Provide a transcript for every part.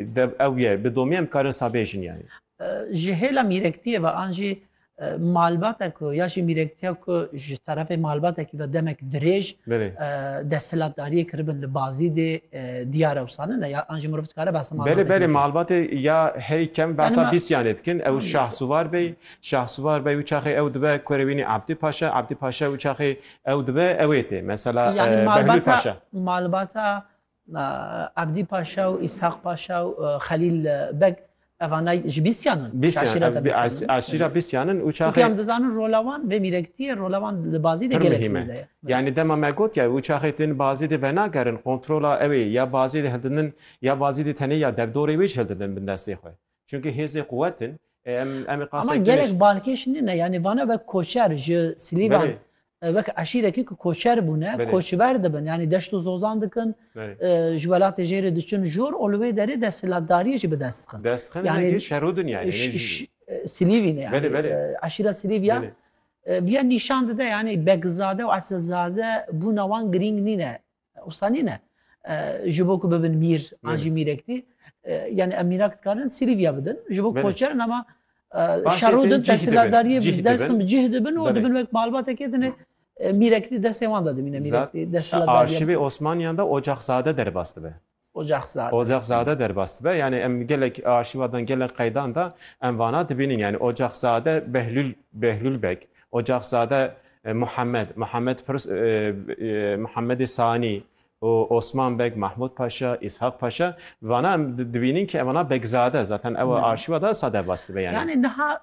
Dev ew ye, bi domî em karin sabê jin ya ye. Ji hêla mîrektiyê ve an jî malbate ku ya jî mîrektiya ku ji terefê malbatekî ve demek dirêj desthilatdariyê kiribin li bazî dê diyar ewsanin e ya an jî mirov dikare behsa malbatê. Belê belê malbatê ya herî kem behsa bîsyanê dikin ew Şahsuvar bey Şahsuvar bey û çaxê ew dibe Kurewînî Abdî Paşa Abdî Paşa û çaxê ew dibe ewê tê mesela Behlûl Paşa. Malbata Abdî Paşa û Îshaq Paşa û Xelîl Beg evanay ji Bîsyan in. Aşîra Bîsyan in û çaxê. Em dizanin rola wan vê mîrekitiyê rola wan li bazî de gelek zêde ye. Yanî dema me got ya û çaxê tên bazî de venagerin kontrola ew ê ya bazî de hildidin ya bazî de tenê ya derdorê wê ji hildidin bin destê xwe. Çünkü hêzê quwet in. E, Em em ê Ama qasek gelek tênêş. balkêş nine yani vana ve koçer ji Silîvan Belê, e, wek eşîrekî ku koçer bûne Belê. koçber dibin yani deşt û zozan dikin belê. e, ji welatê jêrê diçin jor û li wê derê desthilatdariyê jî bi dest dixin. Dest xin Yani- yani, şerû din yani. Ş- Yani, ş- e, Silîvîne yani Belê, belê. e, eşîra Silîvya belê. e, viya nîşan dide yani Bekzade û Esilzade bûna wan girîng nîne Usta nîne. Ji bo ku bibin mîr an jî mîrektî yani em mîrak dikarin sîrîviya bidin ji bo koçerin ama şerû din tesîlatdariyê bi dest bin bi cih dibin û dibin wek malbatekê dine mîrektî destê wan de dimîne mîrektî desîlatdariyê. Arşîvê Osmaniyan de Ocaxzade derbas dibe. Ocaxzade. Ocaxzade derbas dibe. Yanî em gelek arşîva dan, gelek qeydan de em vana dibînin. Yanî Ocaxzade Behlûl, Behlûl Beg, Ocaxzade Muhammed, Muhammed Pirs, Muhammedê Sanî û Osman Beg, Mahmûd Paşa, Îshak Paşa vana em dibînin ke em vana Begzade. Zaten ew arşîva de wisa derbas dibe yanî. Yanî niha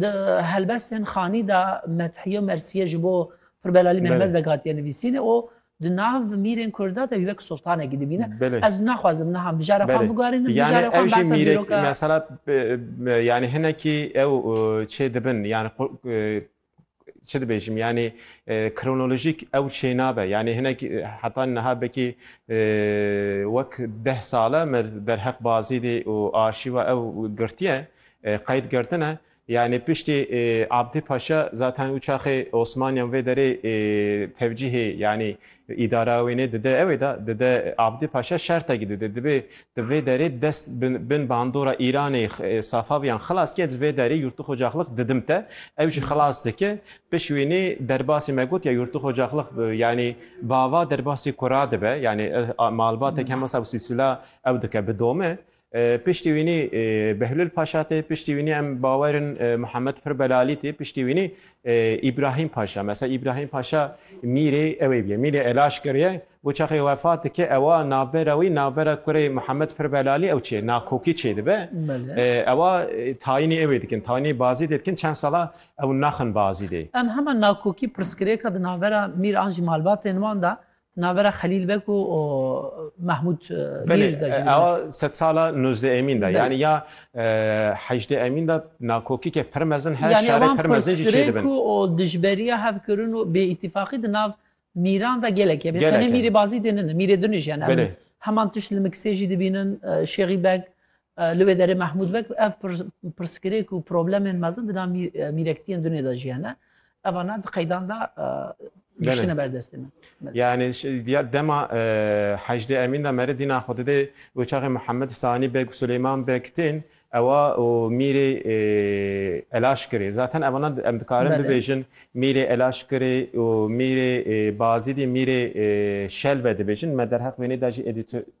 Di helbestên xanî de methîye û mersîye ji bo Pirbelalî Mehmed vegatiye nivîsînê û di nav mîrên Kurda de wek sultanekî dibîne. Ez naxwazim niha mijara xwe bigarînim, mijara xwe behsa dîroka. Mesela yani hinekî ew çêdibin yani Çi dibêjim yanî kronolojîk ew çênabe yanî hinek heta niha bekî wek deh sale me derheq Bazîdî û arşîva ew girtiye qeyd girtine. Yanî piştî Abdî Paşa zaten û çaxê Osmaniyan vê derê tevcîhê yanî Îdara wê nê dide ew ê da dide Abdî Paşa şertekî dide divê di vê derê dest bin bandora Îranê Safaviyan xilas ke ji vê derê Yurtixocaxlix didim te ew jî xilas dike piş wê nê derbasê me gotiya Yurtixocaxlix yanî bava derbasê kura dibe yanî malbatek hema sewsî sila ew dike bi dome Piştî wînî Behlul Paşa tê, piştî wînî em bawer in Muhammed Pir Belalî tê, piştî wînî Îbrahîm Paşa. Mesela Îbrahîm Paşa mîrê ewê bîye. Mîrê Elaşkir ye. Bo çaxê wefat dike ewa navbera wî, navbera kurê Muhammed Pir Belalî ew çê, Nakokî çê dibe. Ewa tayînî ewê dikin, tayînî Bazîdê dikin. Çend sala ew naxin Bazîdê. Em hema Nakokî pirsgirêka di navbera mîr an jî malbatên wan de Navbera Xelîl Beg û Mehmûd Mîr de jî. Belê, ew sedsala nozdeh emîn de yanî ya hejdeh emîn de nakokîkê pir mezin heye, şerê pir mezin jî çêdibin. Yanî wan pirsgirêk û dijberiya hevkirin û bêîtîfaqî di nav mîran de gelek hebe. Tenê mîrê Bazîdê nine, mîrê din jî hene. Heman tişt li Miksê jî dibînin, Şêxî Beg, Li wê derê Mehmûd Beg ev pirsgirêk û problemên mezin di nav mîrektiyên dunê de jî hene. Eva na di qeydan de giştine ber destê min. Yani ya dema hejdê Emîn de meri dîna xwe didê û çaxê Mihemed Sanî Beg û Suleyman Beg tên ewa û mîrê Elaşkirê. Zaten eva na em dikarin bibêjin mîrê Elaşkirê û mîrê Bazîdî mîrê Şelve dibêjin. Me derheq wênê de jî